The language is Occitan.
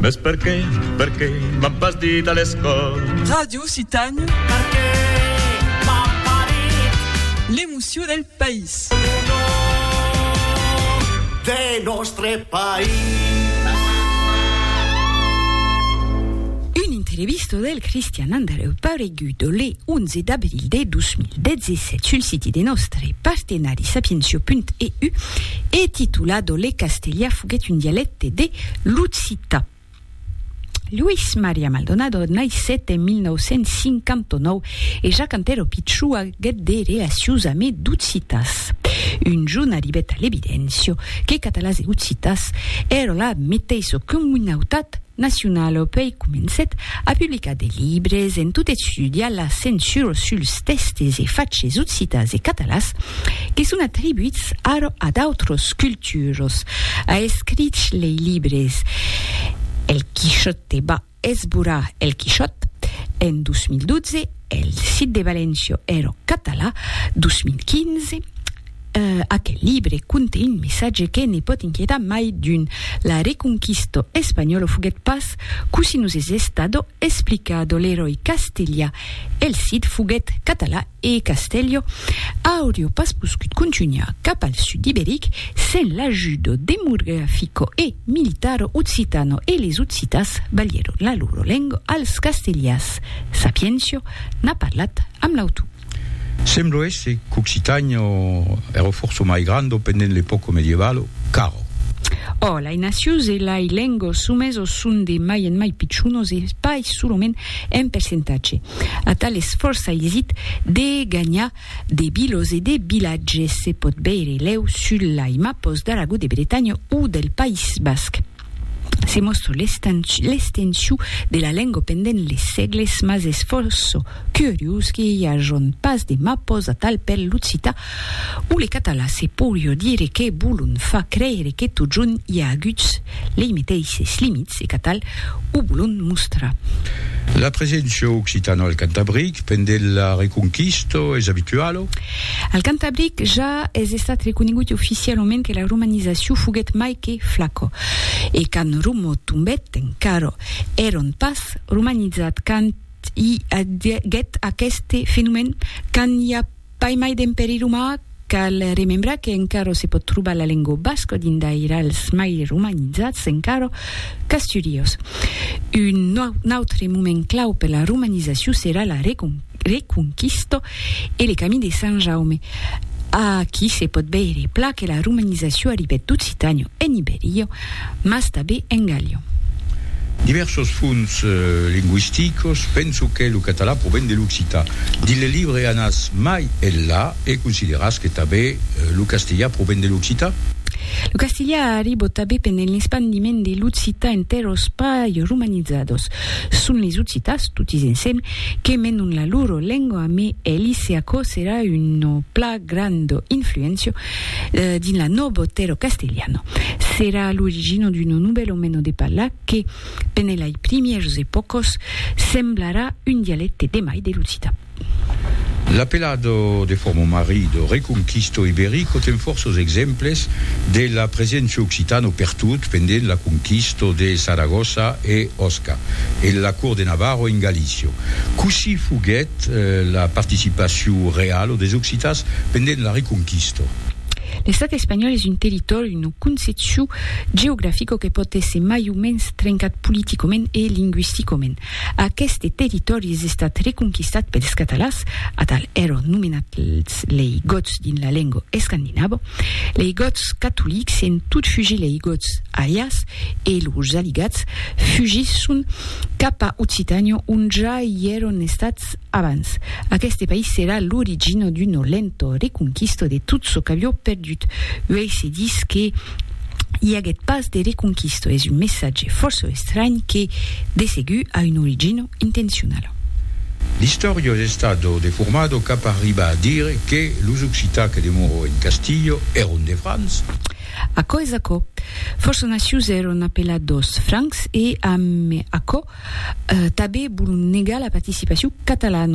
Mes perqué, perqué m'an pas dit a l'escòl. Ràdio Occitània. Perqué m'an pas dit. L'emocion del país. Lo nom de nòstre país. Una entrevista del Cristian Andreu pareguda le. 11 d'abril de 2017 sul siti de nòstre partenari sapiencio.eu e titulado Le castelhà foguèt un dialècte de l'occitan. Luis Maria Maldonado naissèt en 1959 e ja quand èra pichou aguèt de relacions amé d'occitans. Un jorn arribèt a l'evidencio que catalans e occitans èra la meteissa comunautat nacionalo pei comencèt a publicar de libres en tot estudiar la censura suls tèxtes e faches occitans e catalans que son atribuits ara a d'autras culturas. A escrich lei libres El Quixote va esborar El Quixòt en 2012, El Cid de València èra català, 2015, Aquel libre conte un messatge que ne pòt inquietar mai d'un, la reconquisto espanhòlo foguèt pas cossí nos es estado explicado, l'eròi castelha, el Cid foguèt català e Castello aurio pas poscut contunhar cap al sud iberic sen l'ajudo demografico e militaro occitano e les occitas balhèron la loro lengo als castellas, Sapiencio n'a parlat amb l'autor. Semblo èsser qu'Occitània èra fòrça mai granda pendent l'epòca medievalo, car. Ò, lai nacions e lai lengos somesos son de mai en mai pichonos e pas solament en percentatge. Atal esfòrç aisit de ganhar de vilos e de vilatges se pòt veire lèu sul lai mapos d'Aragó, de Bretanha o del País Basc. Se mòstro l'estenshú de la lengo pendent les sègles, mas es fòrça curiós que i ajon pas de mapos atal per l'occità o le català. Se poirió dire que Boulon fa creire que totjorn i a aguts lei meteisses limits e qu'atal o Boulon mostra. La preséncia occitana al Cantabric pendent la Reconquista es abituala? Al Cantabric ja es estat reconegut oficialament que la romanizacion foguèt mai que flaco, e quand Romo tombèt encara èron pas romanizat quand i aguèt aqueste fenomèn. Quand i a pas mai d'Empèri Romà, cal remembrar que encara se pòt trobar la lenga basca dins d'airals mai romanizats encara, Casturios. Un autre moment clau per la romanizacion serà la Reconquista. Reconquista e le Camí de Sant Jaume. Aquí se pòt veire plan que la romanizacion arribèt d'Occitània en Ibèria, mas tanben en Gàllia. Divèrsos fonts lingüisticos, penso que lo catalan proven de l'occitan. Dins le libre Anatz mai enlà e consideratz que tanben lo castelhan proven de l'occitan. Lo castelhan arribòt tanben pendent l'espandiment de l'occitan entèr'os païses romanizados. Son les occitas, totis ensem, que menon la loro lengua, me Elise aquò serà una pla granda influencia dins la nobo tero castellano. Serà l'origina d'una novèla mena de parlar que, pene lai primièrs epòcas, semblarà un dialecte de mai de l'occita. L'apelado de forma marido, reconquisto iberico ten fòrços exemples de la preséncia occitano pertot pendent la conquisto de Saragossa e Osca e la cort de Navarro en Galicio. Cossí foguèt la participacion realo des occitans pendent la reconquisto? L'estat espanhòl es un territòri, una concepcion geografica que pòt èsser mai o mens trencat politicoment e linguisticoment. Aqueste territòri es estat reconquistat pels catalans, atal èron nomenats lei Gòts dins la lenga escandinava. Lei Gòts catolics en tot fugir lei Gòts aliats e los aligats fugisson cap a Occitània ont ja i èron estats abans. Aqueste país serà l'origina d'una lenta reconquista de tot çò qu'avió perdut. Uèi se ditz que i aguèt pas de reconquista es un messatge fòrça estranh que, de segur, a una origina intencionala. L'istòria es estada deformada cap a arribar a dire que los occitans que demorò en Castilha èron de Francs. Aquò es aquò. Fòrça nacius èron apelados Francs e, amb aquò, tanben volon negar la participacion catalana.